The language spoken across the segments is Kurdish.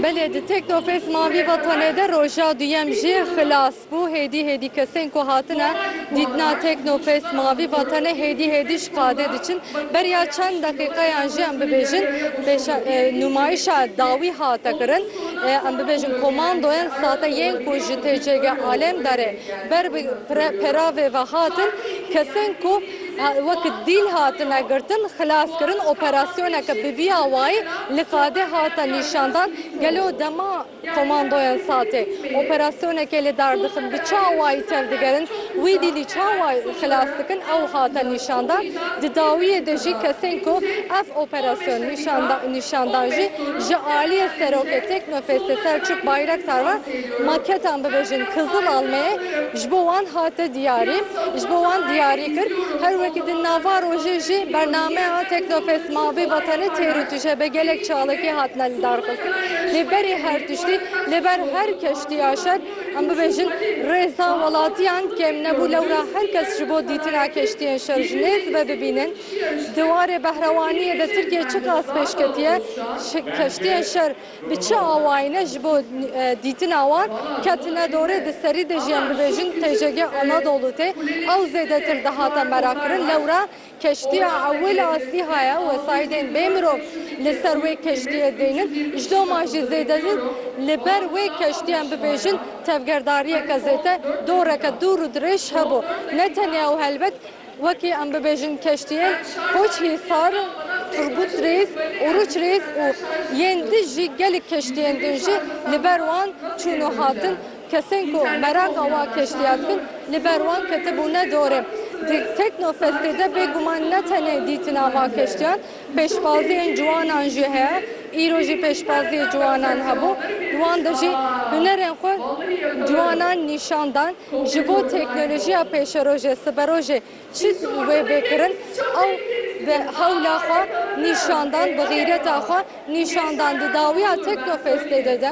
Belê di teknofest mavî vatanê de roja duyem jî xilas bû. Hêdî hêdî kesên ku hatine dîtina teknofest mavî vatanê hêdî hêdî ji qadê diçin. Beriya çend deqîqeyan jî em bibêjin pêşa nûmayîşa dawî hate kirin. Em bibêjin komandoyên sate yên ku ji TCG Alemdarê ber bi peravê ve hatin kesên ku Wek dîl hatine girtin, xilas kirin, operasyoneke bi vî awayî li Fadê hate nîşandan. Gelo dema komandoyên SATê operasyonekê li dar dixin bi çi awayî tevdigerin, wî dîlî çi awayî xilas dikin ew hate nîşandan. Di dawiyê de jî kesên ku ev operasyon nîşandan jî ji aliyê Serokê Teknofestê Selçuk Bayraktar ve. Maketan bibêjin Kizil Almê ji bo wan hate diyarî, ji bo wan diyarî kir. Her wekî di nava rojê jî bernameya Teknofest Mavê Vatanê têr û tije bi gelek çalakî hatine lidarxistin. Lê berî her tiştî, li ber her keştiya şer, em bibêjin rêza welatiyan kêm nebû. Lewra her kes ji bo dîtina keştiyên şer ji nêz dibe bibînin di warê behrewaniyê de Tirkiye çiqas pêşketiye keştiyên şer. Bi çi awayîne ji bo dîtina wan ketine dorê di serî de jî em bibêjin TJG Anadolu tê ew zêdetir dihate merakirin. Lewra keştiya ewil a Sîha ye, wesaîdên bê mirov li ser wê keştiyê deynin. Ji doma jî zêdetir li ber wê keştiyê em bibêjin tevgerdariyeke zêde doreke dûr û dirêj hebû. Ne tenê ew helbet. Wekî em bibêjin keştiyên Koç Hîsar, Turgut Rêz, Oruç Rêz û yên din jî gelek keştiyên din jî li ber wan çûn û hatin. Kesên ku meraqa wa keştiya dikin li ber wan ketibûne dorê. Di Teknofestê de bêguman ne tenê dîtina va keştiyan, Pêşbaziyên ciwanan jî heye. Îro jî pêşbaziyê ciwanan hebû. Di wan de jî hunerên xwe ciwanan nîşan dan. Ji bo teknolojiya pêşerojê, siberojê çi wê bê kirin ew bi hewla xwe nîşan dan, bi xîreta xwe nîşan dan. Di dawiya Teknofestê de de,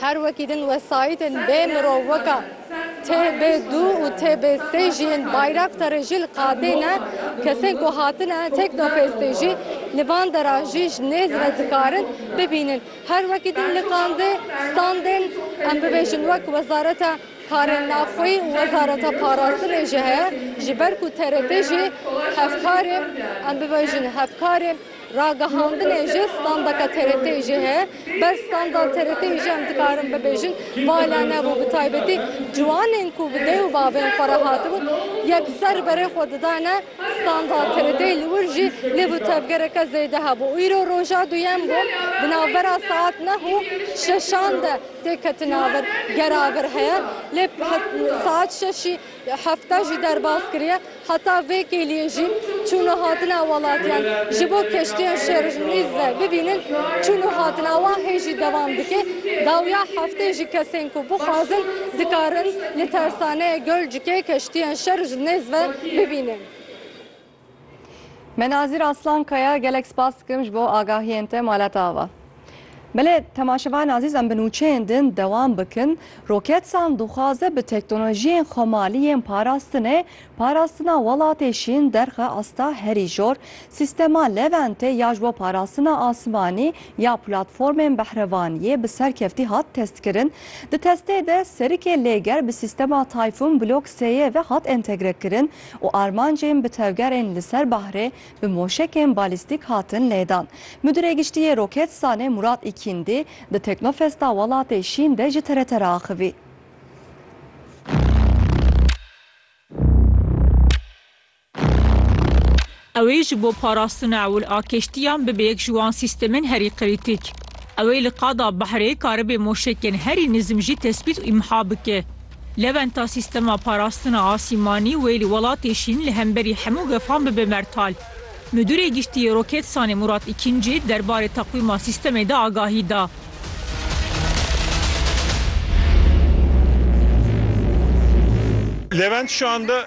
Her wekî din wesayîtên bê mirov weka TB2 û TB3 jî yên Bayraktarê jî li qadê ne. Kesên ku hatine Teknofestê jî li van deran jî ji nêz ve dikarin bibînin. Her wekî din li qandê standên em bibêjin wek Wezareta Karên Navxweyî û Wezareta Parastinê jî heye. Ji ber ku TRT jî hevkarê em bibêjin hevkarê. Ragihandinê ji standeke TRT'ê jî heye. Ber standa TRT'ê jî em dikarin bibêjin vala nebû. Bi taybetî ciwanên ku bi dê û bavên xwe re hatibûn yekser berê xwe didane standa TRT'ê li wir jî lê bi tevgereke zêde hebû. Îro roja duyem bû. Di navbera saet neh û şeşan de têketina vir gera vir heye. Lê saet şeşî Hefta jî derbas kiriye. Heta vê kêliyê jî çûn û hatina welatiyan ji bo keştiyan şerrnîz ve bibînin çûn û hatina wan hê jî dewam dike. Dawiya hefteyê jî kesên ku bixwazin dikarin li tersaneya Gölcükê keştiyan şerrnêz ve bibînin. Me Nazîr Aslan Kaya gelek spas dikim ji bo agahiyên te malata ava. Belê temaşevan azîz em bi nûçeyên din dewam bikin. Roketsan dixwaze bi teknolojiyên xwemalî yên parastinê parastina welatê şîn derxe asta herî jor. Sîstema Leventê ya ji bo parastina asimanî ya platformên behrevaniyê bi serkeftî hat testkirin. Di testê de serikê lêger bi sîstema Typhoon Block sêyê ve hat entegrekirin. û armancên bi tevgerên li ser bahrê bi moşekên balîstîk hatin lêdan. Mudîrê Giştî yê Roketsanê Murat Îkîndî di Teknofesta Welatê Şîn de ji TRT re axivî. Ew ê ji bo parastina ewil a keştiyan bibe yek ji wan sîstemên herî krîtîk. Ew ê li qada behrê karibê moşekên herî nizm jî tespît û îmha bike. Lewenta sîstema parastina asîmanî wê li welatê şîn li hemberî hemû gefan bibe mertal. Midûrê Giştî yê Roketsanê Murat Îkincî der barê teqwîma sîstemê de agahî da. Levent şande.